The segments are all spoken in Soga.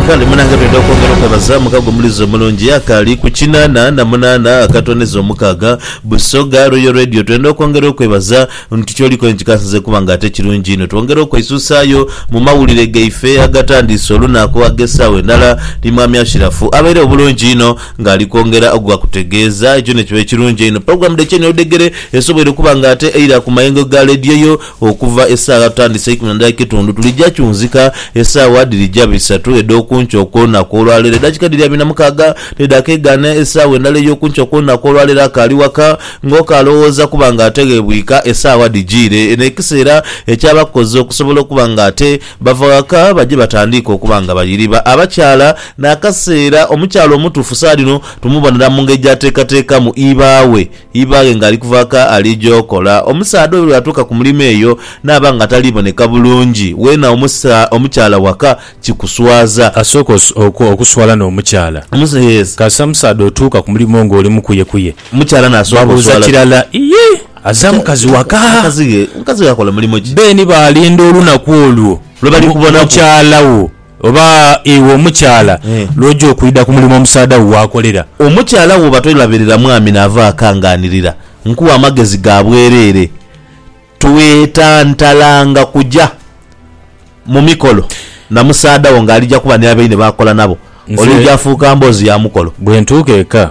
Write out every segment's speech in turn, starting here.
Kale munange twidha okwongera okwebaza mukago omulizi omulungi akaali ku kinaana na munaana akatooneza omukaaga Busoga Royal Radio twenda okwongera okwebaza nti kyoliko ni kikasinze kuba nga ate kirungi inho twongera okweisuusaayo mu mawulire gaife agatandiise olunaku ag'esaawa endala ni Mwami Ashirafu abaire obulungi inho nga ali kwongera okugakutegeeza ekyo nikiba ekirungi einho Pulogulamu dh'ekyenhi odhegere esoboire okuba nga ate eira ku mayengo ga lediyo yo Okuva esaawa totandise eikumi na ndala ekitundu, tulija kyunzika esaawa dhirija bisatu edh'okunkyo okw'olunaku olwaleero. Edakika dhiri abiri na mukaaga dhedhakegaana esaawa endala ey'okunkyo okw'olunaku olwaleero. Akaali waka nga oka alowooza kuba nga ate ghebwika esaawa dhijiire. Eno ekiseera ekyaba kukoze okusobola okuba nga ate bava waka baje batandiike okuba nga bayiriba abakyala. N'akaseera omukyala omutuufu saadhino tumubonera mu ngeri gy'ateekateekamu ibaaghe. Ibaaghe ng'ali kuva ka ali gy'okola. Omusaadha oyo bw'atuuka ku mulimo eyo naaba nga tali boneka bulungi, weena omusa omukyala waka kikuswaza. Asooka oku, okuswala n'omukyala. Omus, yes. Kasita omusaadha otuuka ku mulimo ng'oli mukuyekuye. Omukyala n'asooka oswala. Babuuza kirala, Iye! Azza mukazi waka? Mukazi ghe, mukazi ghe akola mulimo ki? Beeni baalinda olunaku olwo, Lwe bali kubonaku. mukyala wo. Oba iwe omukyala lw'oja okwidha ku mulimo omusaadha wo gw'akolera. Omukyala bw'oba tolabirira mwami naava ghaka ng'anirira, nkuwa amagezi ga bwereere, Twetantalanga kuja mu mikolo na musaadha wo ng'alija kuba ni abaine b'akola nabo. Olija fuuka mboozi ya mukolo. Bwe ntuuka eka.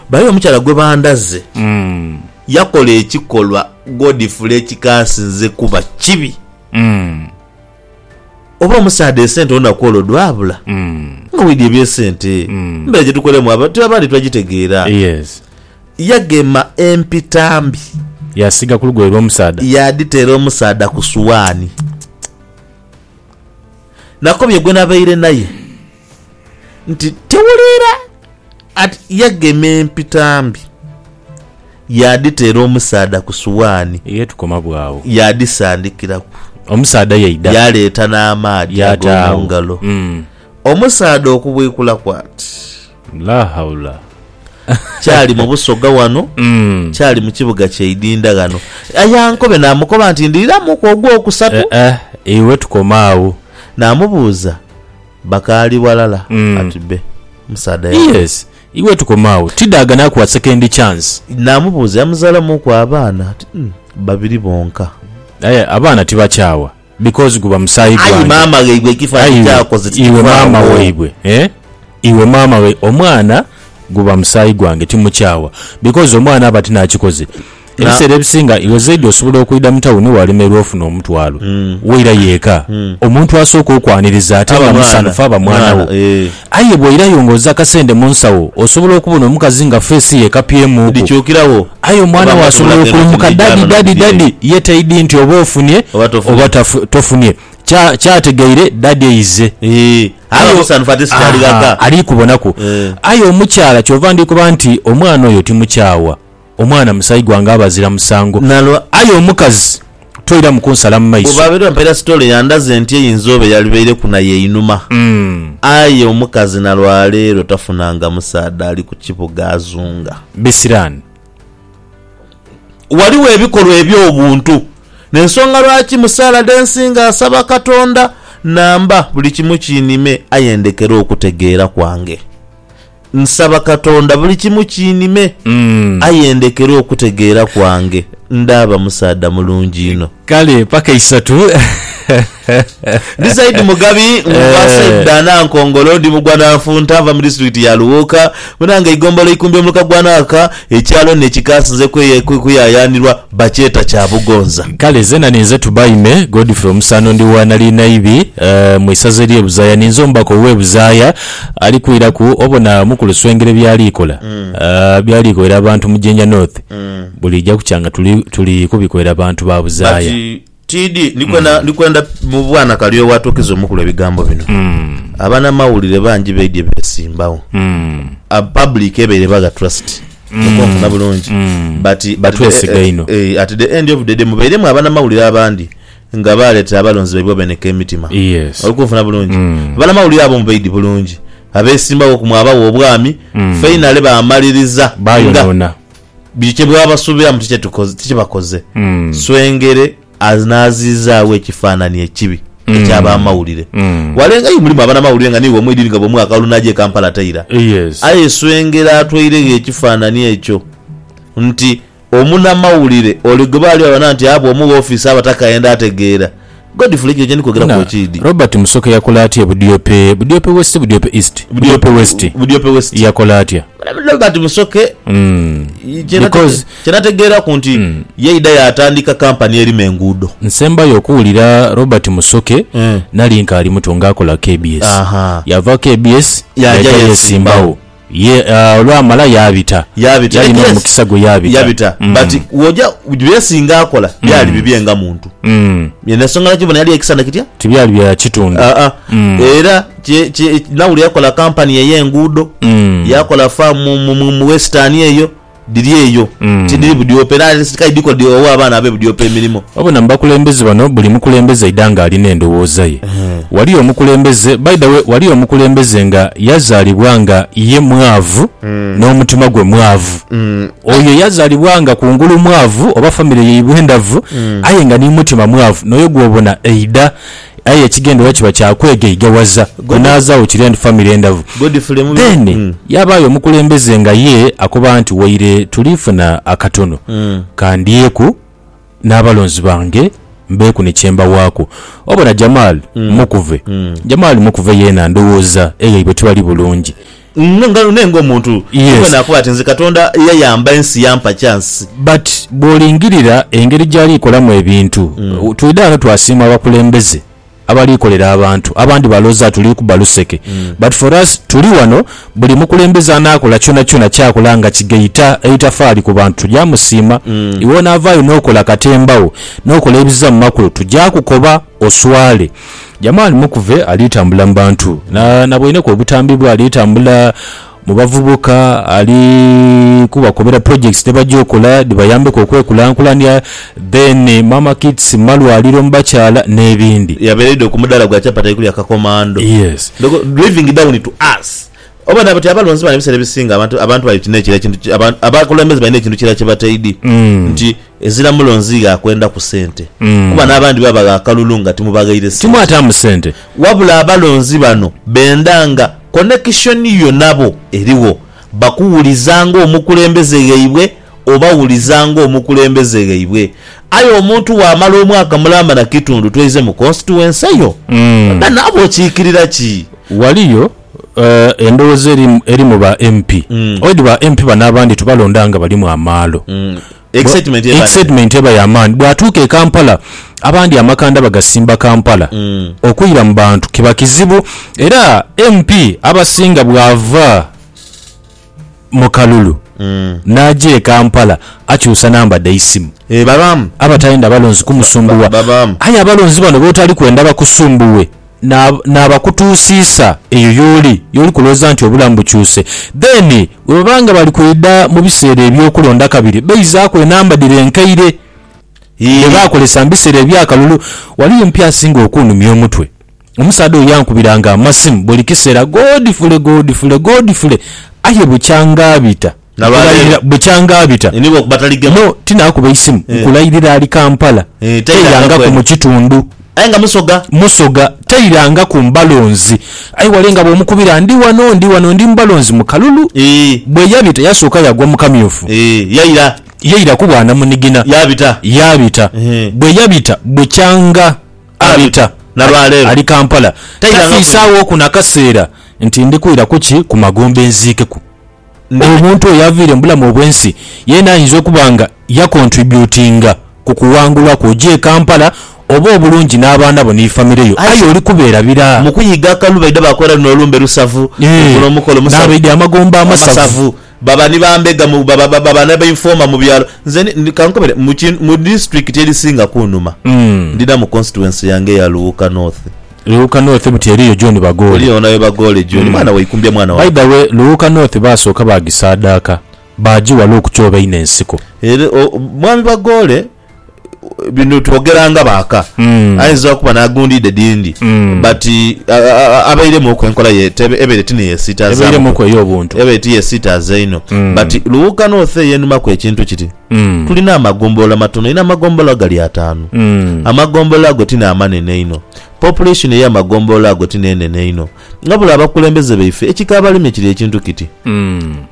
Bayo omukyala gwe bandhaze yakola ekikolwa Godfrey ekikaasinze kuba kibi. Oba omusaadha esente olunaku olwo dhwabula nga waidhi eby'esente. Embera gye tukolemu aba- tube abandi twagitegeera. Yes. Yagema empitambi Yasiiga ku lugoye lw'omusaadha. yaadhiteera omusaadha ku suwaani. Nakobye gwe nabaire naye. nti tewuliira ati yagema empitambi yaadhiteera omusaadha ku suwaani Ye tukoma bw'agho. yaadhisandikiraku. Omusaadha yaidha. Yaaleeta n'amaadhi Yaata ag'omu agho. ngalo. Mm. Omusaadha okubwikulaku ati, La haula. Kyali mu Busoga wano, Mm. kyali mu kibuga kya Idinda ghano. Ayankobe naamukoba nti, Ndhiiramuku ogwokusatu. Eh, eh, iwe tukoma agho. Naamubuuza Bakaali walala Mm. ati be musaadha yafa. Yes. Iwe tukome agho. Tida agane akuwa second chance. Namubuuza yamuzalamuuku abaana ati mm, babiri bonka. Aye abaana tibakyawa because guba musaayi Ayi gwange. maama ghaibwe ekifanhi Aye kyakoze iwe maama tikivaawo. waibwe eh? iwe maama wai omwana guba musaayi gwange timukyawa because omwana aba tinakikoze Ebiseera ebisinga iwe zaidi osobola okwidha mu tawuni waalemerwa ofuna omutwalo, wairayo eka, omuntu asooka okwaniriza ate nga musanhufu aba mwana wo. Aye bw'oirayo ng'oza akasente mu nsawo, osobola okubona omukazi nga feesi ye ekapyemugho. Aye omwana wo asobola okulumuka Daddy, Daddy, Daddy, ye taidhi nti oba ofunye oba tofunye. Ky'ategeire Daddy eize. Aye ali kubonaku. Aye omukyala ky'ova ndi koba nti omwana oyo timukyawa. Omwana musayi gwange abazira musango nalwo aye omukazi toiramu kunsala mu maiso. Bwebaabaire bampa irasitole yandaze nti eyinza oba eyalibaireku nayo einhuma aye omukazi nalwaleero tafunanga musaadha ali ku kibuga azunga. Bisiraani. Ghaligho ebikolwa eby'obuntu n'ensonga lwaki mu saala dhe nsinga nsaba Katonda namba buli kimu kinime aye ndhekere okutegeera kwange. Nsaba Katonda buli kimu kiinhime, aye ndekere okutegeera kwange. Ndaaba musaadha mulungi inho. Kale paka isatu. Ndi Saidi Mugabi, nva Saidi Danankongolo, ndi mugwananfunta, nva mu disitulikiti ya Luwuuka, Mwinanga eigombolola Ikumbi omuluka gwa Naaka, ekyalo ni ekika sinze kuyayaanirwa bakyeta Kyabugonza. Kale zena ninze Tubaime Godfrey Omusano ndi wa Nalinaibi mu isaza elye Buzaaya ninze omubaka owe Buzaaya Ali kwiraku obona mukulu Swengere byali kola, byali koera abantu mu Jinja North, buliija kukya nga tuli tuli kubikoera bantu ba But buzaaya. TD ndi kwenda ndi kwenda mu bwana kali owatuukiza omukulu ebigambo bino. Abanamawulire bangi baidye besimbawo. A public ebaire bagha trust. Okwo onfuna bulungi. But but Batwesiga inho. eh, at the end of the day mubairemu abanamawulire abandi Nga baaleta abalonzi baibwe abeeneka emitima okunfuna bulungi, abanamawulire abo mu baidhi bulungi abeesimbawo ku mwabagho obwami, fainale baamaliriza nga biri kye bwabasubiramu ti kye bakoze. Swengere anaaziizaagho ekifaanani ekibi eky'abamawulire. Walenga aye mulimu abanamawulire nga niiwe omweidini nga bw'omu akalulu n'aja e Kampala taira. Aye Swengere atweiregho ekifaanani ekyo nti Omunamawulire ole gwe baali babana nti abwa omu woofiisa abataka enda ategeera. Godfrey, ekyo kye ndi kwogeraku Bwana, ekiidhi? Robert Musoke yakola atya e Budiope, Budiope West, Budiope East, Budiope West? Budiope West. Yakola atya? Bwana, Robert Musoke, kye nate, Because. kye nategeeraku nti yaidha yaatandika kampani erima enguudo. Nsembayo okuwulira Robert Musoke nali nkaali muto ng'akola kbs. Aha. Yaava kbs Yaaja yaja yeesimbagho. yeesimbagho. Ye, olwamala yaabita. Yaabita, Yalina yes. omukisa gwe, yaabita. Yaabita. Mm. But woja, bye singa akola byali mm. bibye nga muntu. Mm. N'ensonga lwaki bona yali ekisana kitya? Tibyali bya kitundu. Ah, ah. Mm. Era kye, kye, nawuli yakola kampani ey'enguudo, mm. yakola faamu mu, mu, mu western eyo. Dhiri eyo, tidhiri Budyope era kale dhiko dhighowe abaana be Budyope emirimo. Wabona mu bakulembeze bano buli mukulembeze aidha nga alina endhowooza ye. Waliyo omukulembeze, by the way waliyo omukulembeze nga yazaalibwa nga ye mwaavu n'omutima gwe mwaavu. Oyo yazaalibwa nga kungulu mwaavu oba famire yaibwe ndhavu aye nga ni mutima mwaavu n'oyo gw'obona aidha Aye ekigendererwa kiba kya kwegaigaghaza kunaazaagho kiri and famire endavu. Then yaabaayo omukulembeze nga ye akoba nti waire tuliifuna akatono ka ndyeku n'abalonzi bange mbeeku ni kye mbawaaku. Obona Jamal Mukuve? Jamal Mukuve yeena ndowooza e yaibwe tibali bulungi. None ng'omuntu ni mwene akoba ati, Nze Katonda yayamba ensi yampa kyansi. But bw'olingirira engeri gy'ali kolamu ebintu, twidha ghano twasiima abakulembeze abali kolera abantu. Abandi balooza tuli kuba luseke but for us tuli ghano buli mukulembeze anaakola kyonakyona ky'akola nga kigaita eitafaali ku bantu tugya musiima. Iwe onaavaayo n'okola katemba wo n'okola ebiza mu makulu tugya kukoba oswale. Jamali Mukuve ali tambula mu bantu na nabweineku obutambi bwe ali tambula mu bavubuka ali kubakobera projects dhebagya okola dhibayambeku okwekulankulania then Mama Kits malwaliro mu bakyala n'ebindi. Yabereidho ku mudaala gwa chapati kulya kakomando. Yes. Ndogo driving down to us oba nabo ti abalonzi bano ebiseera ebisinga abantu abantu bali kino ekiri ekintu ki abakulembeze balina ekintu kirala kye bataidhi nti Ezira mulonzi gha kwenda ku sente kuba n'abandi babagha akalulu nga timubaghaire sente. Timwataamu sente. Wabula abalonzi bano benda nga konekishoni yo nabo erigho, bakuwuliza ng'omukulembeze ghaibwe, obawuliza ng'omukulembeze ghaibwe. Aye omuntu bw'amala omwaka mulamba na kitundu twaize mu konsituwense yo, oba naaba okiikirira ki? Waliyo Eh, endhowoza eri mu- eri mu ba MP oidi ba MP bano abandi tubalonda nga balimu amaalo Mm. Excitement eba- excitement eba yamaani bwatuuka e kampala abandi amakanda bagasimba kampala Mm. okwira mu bantu kiba kizibu era mp abasinga bwava mu kalulu n'aja e Kampala akyusa namba dhaisimu. Ee babaamu. Abatayenda balonzi kumusumbuwa. Babaamu. Aye abalonzi bano b'otali kwenda bakusumbuwe n'abakutuusiisa eyo y'oli, y'oli kulowooza nti obulamu bukyuse. Then bwe baba nga bali kwidha mu biseera eby'okulonda kabiri, baizaaku enamba dhire enkaire dhe baakozesa mu biseera eby'akalulu. Waliyo omupi asinga okunhumya omutwe? Omusaadha oyo yankubiranga amasimu buli kiseera, Godfrey, Godfrey, Godfrey, aye bukyanga abita, nkulairira bukyanga abita, no, tinaakuba eisimu, nkulairira ali Kampala, tairangaku mu kitundu. Aye nga Musoga. Musoga, tairangaku Mbalonzi. Aye wale nga bw'omukubira, ndi wano, ndi wano, ndi Mbalonzi mu kalulu. Bwe yabita yasooka yagwa mu kamyufu. Yaira. Yaira ku bwanamunigina. Yaabita. Yaabita. Bwe yabita bukyanga. Abita ali Kampala tafiisaawo oku na kaseera nti ndi kwira ku ki ku magombe nziikeku omuntu oyo aviire mu bulamu obw'ensi yeena ayinza okuba nga yakontribyutinga ku kuwangulwa kwo ojja e Kampala obe obulungi n'abaana bo ni famire yo aye oli kubeera bira. Mu kuyiga akalu baidha baakola luno olumbe lusavu, okula omukolo musavu, n'abaidha amagombe amasavu. Baba ni ba mbega mu, baba, baba ni ba informer mu byalo. Nze ni, ni, kankobere, mu ki, mu district erisinga kunuma, ndina mu constituency yange eya Luwuka North. Luwuka North buti eriyo John Bagoole. Eriyo onawe Bagoole John. Mm. Mwana waikumbya mwana By wange. the way, Luwuka North baasooka baagisaadaaka, baagiwala okukyoba einho ensiko. Ere, o, Mwami Bagoole. Bino twogera nga baaka, aidha okuba n'agundhidde dhindi but abairemuuku enkola ye ebaire ti ni yesiitaazaamuku, ebaire ti yesiitaaza inho. But Luwuga North eyo enumaku ekintu kiti, tulina amagombolola matono inho, amagombolola gali ataanu. Amagombolola ago ti n'amanene inho, population ey'amagombolola ago ti n'enene inho. Nga buli abakulembeze baife, ekikaabalemye kiri ekintu kiti,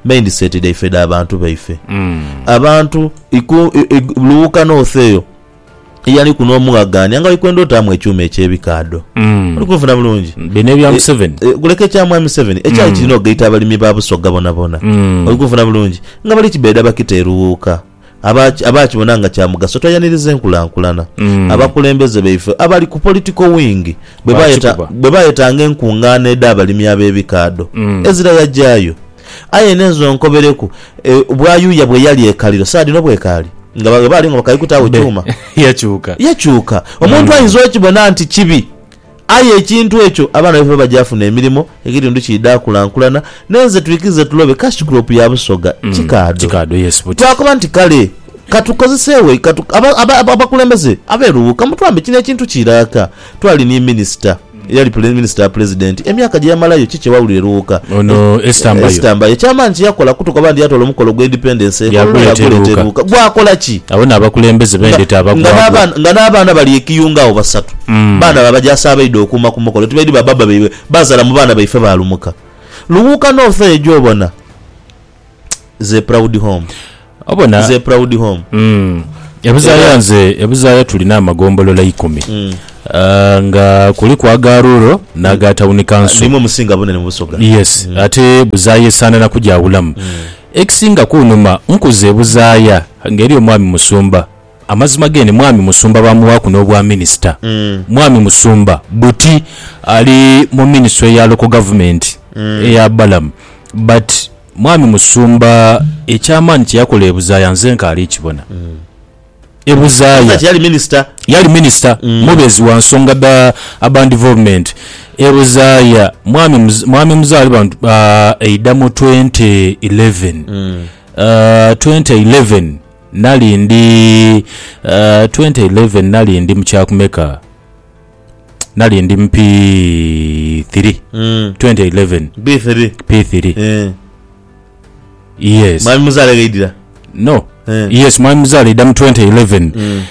mindset dhaife dha bantu baife. Abantu iku, i, i, lughuka north eyo, eyaliku n'omughagaania nga ali kwenda otaamu ekyuma eky'ebikaadho. Oli kunfuna bulungi? Bino ebya E, Museveni. e, kuleka ekya Mwami Museveni, ekyali kirina okugaita abalimi ba Busoga bonabona. Oli kunfuna bulungi? Nga bali kibeda bakita e Lughuka. aba aba akibona nga kya mugaso tweyanirize enkulankulana. Abakulembeze baife abali ku political wing bwe bayeta Bakikuba. bwe bayetanga enkungaana edh'abalimi ab'ebikaadho ezira yagyayo. Aye n'ezo nkobereku e, bwayuuya bwe yali e Kaliro saa dhino bwekaali? Nga ba- bwe baali nga bakali kutaagho Be, kyuma. yakyuka. Yakyuka. Omuntu ayinza okibona nti kibi Aye ekintu ekyo abaana baife baba gyafuna emirimo, ekitundu kiidha kulankulana, n'enze twikize tulobe cash crop ya Busoga. Kikaadho. Twakoba nti kale ka tukozeseegho ikatu abakulembeze abeeruwuuka mutwambe kino ekintu kiiraaka. Twali ni Minisita, eyali Minisita wa Pulezidenti emyaka gye yamalayo ki kye wawulira eruwuuka? Ono Esther Mbayo. Esther Mbayo. Eky'amaani kye yakola kutukoba nti yatoola omukolo gwa Independence e Kololo yaaguleeta eruwuuka. Gwakola ki? Abo n'abakulembeze b'endete abagwagwa. Nga n'abaana bali e Kiyunga agho basatu. Baana ba bajaasi abaidha okuuma ku mukolo tibaidhi ba baaba baibwe baazala mu baana baife ba lumuka. Lughuuka n'ofa eyo gy'obona. It's a proud home. Obona? It's a proud home. E Buzaaya nze, e Buzaaya tulina amagombolola ikumi nga kuliku aga rural n'aga tawuni kanso. Nimwo musinga bunene mu Busoga. Yes. Ate Buzaaya esaanana kugyawulamu. Ekisinga kunhuma nkuze e Buzaaya ng'eri omwami musumba. Amazima gene Mwami Musumba baamuwaaku n'obwa Minisita. Mwami Musumba buti ali mu Ministry ya Local Government eya Balaam but Mwami Musumba eky'amaani kye yakola e Buzaaya nze nkaali kibona. E Buzaaya. Kati yali Minisita? Yali Minisita, mubeezi wa nsonga dha Urban Development. E Buzaaya Mwami Mwami Muzaalibantu aidha mu twenty eleven, twenty eleven, Nali ndi, uh, twenty eleven nali ndi mu kya kumeka? Nali ndi mu P three, Mm. twenty eleven, B3. P three. Eh. Yes. Mwami Muzaale ghaidira. No. Eh. Yes, mwami Muzaale aidha mu twenty eleven. Mm.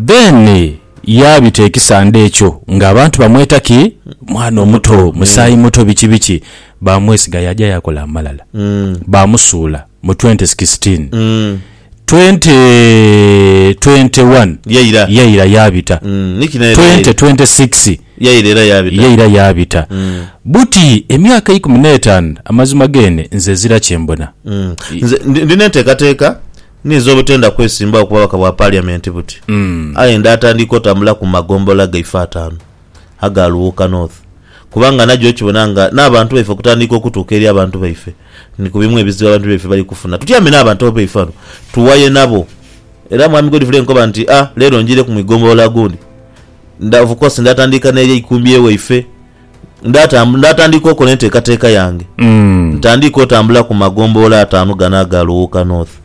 Then eh, yaabita ekisande ekyo ng'abantu bamweta ki mwana omuto, musaayi muto, biki biki. baamwesiga yaaja yaakola amalala. Baamusuula mu twenti sikisitin. Twenti twenti wani Yaira. yaira yaabita. Mm, ni kino era Twenti yaira. twenti sikisi Yaira era yaabita. yaira yaabita. Buti emyaka eikumi n'etaanu amazima geene nze ezira kye mbona. Mm. Nze ndi- ndina enteekateeka ninze obutenda kwesimbawo ku bubaka bwa Parliament buti. Aye ndaatandiika otambula ku magombola gaife ataanu. aga Luwuuka North kubanga nagyo okibona nga n'abantu baife okutandiika okutuuka eri abantu baife ni ku bimu ebizibu abantu baife bali kufuna. Tutyame n'abantu abaife bano tuwaye nabo era Mwami Godfrey nkoba nti a leero njiireku mu igombolola gundi nda of course ndaatandiika n'eri eikumbi ewaife ndaata ndaatandiika okola enteekateeka yange ntandike otambula ku magombolola ataanu gano aga Luwuuka North.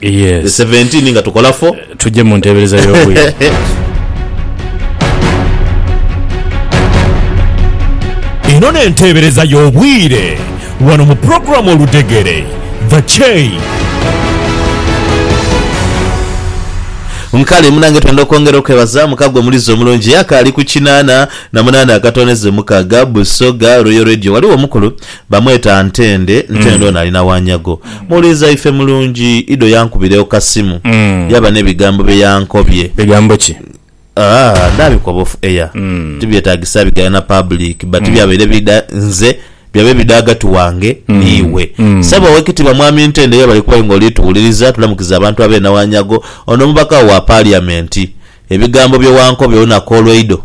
Yes. Seventeen nga tukola fo. Tujje mu nteebereza y'obwire. Eno n'enteebereza y'obwire wano mu pulogulaamu Oludegere, The Chain. Nkale munange twenda okwongera okwebaza muka gwe mulizi omulungi eyakaali ku kinaana na munaana akatoneze mukaga Busoga Royal Radio waliwo omukulu Bamweta Ntende, Ntende ono ali na Wanyago. Muwuliriza ife mulungi, Ido yankubira eokasimu yaba n'ebigambo bye yankobye. Bigambo ki? Aah ndabikoba off air, tibyetagisa bigaya na public but byabaire bidha nze, byabaire bidha ghagati wange n'iwe. Ssebo Owekitiibwa Mwami Ntende webale kuba aye nga oli tuwuliriza, tulamukiza abantu ab'e Nawanyago, ono omubaka wo wa Parliament. Ebigambo bye wankobya olunaku olw'eido,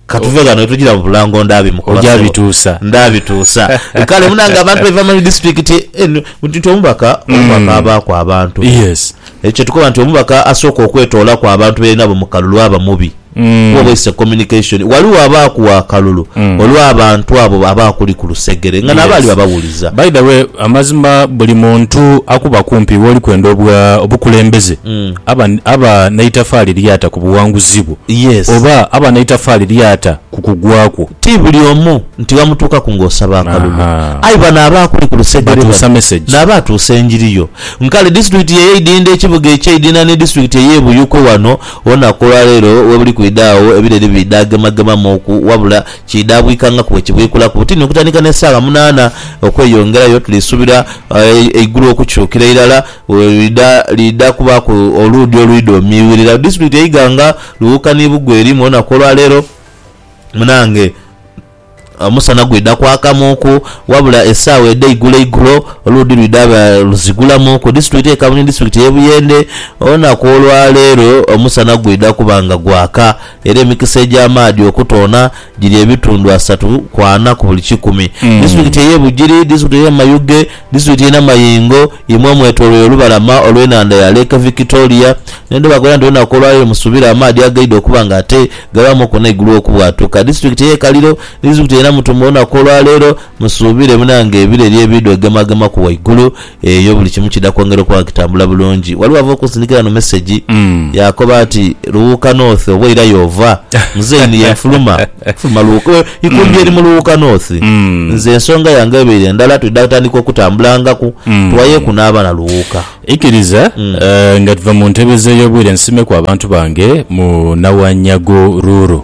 Ka tuve ghano ni tugira mu Bulango ndaabimukoba sebo. Ojabituusa. Ndabituusa. Kale munange abantu baiva mu disitulikiti eno nti nti omubaka, omubaka abaaku abantu. Yes. Ekyo kye tukoba nti omubaka asooka okwetoolaku abantu be yali nabo mu kalulu aba mubi kuba oba it's a communication. Ghaligho abaaku wa kalulu olw'abantu abo aba akuli ku lusegere nga nabo ali babawuliza. By the way, amazima buli muntu akuba kumpi w'oli kwenda obwa obukulembeze, aba, aba n'eitafaali ly'ata ku buwanguzi bwo, Yes. oba aba n'eitafaali ly'ata ku kugwa kwo. Ti buli omu nti ghamutuukaku ng'osaba akalulu. Ahaa. Aye bano abaakuli ku lusegere Batuusa bano message. nabo atuusa enjiri yo. Nkale disitulikiti ye Idinda ekibuga eky'Idinda ni disitulikiti ey'e Buyikwe wano olunaku olwaleero webuli kwidha agho ebireri biidhagemagemamuuku wabula kiidhabwika nga kuwe kibwikulaku butini okutandika n'esaawa munaana okweyongerayo. Tulisuubira eigulu okukyukira irala Bwe lwidha, liidha kubaaku oluudhi olwidha omiiwirira ku disitulikiti e Iganga, Luwuuka ni Bugweri. Mu lunaku olwa leero munaange omusana gwidha kwakamuuku, wabula esaawa edheigulo igulo oluudhi lwidha luzigulamu ku disitulikiti e Kaabwe ni disitulikiti e Buyende. Olunaku olwa leero omusana gwidha kuba nga gwaka. Era emikisa egy'amaadhi okutoona giri ebitundu asatu ku ana ku buli kikumi. Disitulikiti ey'e Bugiri, disitulikiti ey'e Mayuge, disitulikiti y'e Namayingo imwe omwetoloire olubalama olw'enhandha ya Lake Victoria n'endho bakola nti olunaku olwa leero musuubire amaadhi agaidha okuba nga ate gabaamuku n'eigulu okubwatuka. Disitulikiti ey'e Kaliro ni disitulikiti ey'e Namutumba olunaku olwa leero musuubire munange ebireri ebiidha ogemagemaku waigulu Eyo buli kimu kidha kwongera okuba nga kitambula bulungi. Ghaligho ava okunsindikira ghano mesegi yaakoba ati, Luwuuka North oba ira y'ova? Muzeeyi ni yenfuluma fuluma Luwuuka. Ikumbi eri mu Luwuuka North. Nze ensonga yange ebaire ndala, twidha tandika okutambulangaku tuwayeeku n'abaana Luwuuka. Ikiriza nga tuva mu ntebe z'ey'obwire nsimeku abantu bange mu Nawanyago Ruuru.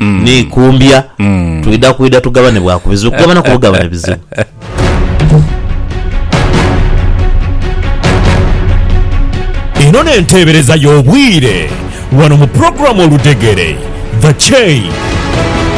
n'eikumbya. Twidha kwidha tugabane bwa ku bizibu, kugabanaku bugabane bizibu. Eno n'enteebereza y'obwire wano mu pulogulaamu Oludegere, The Chain.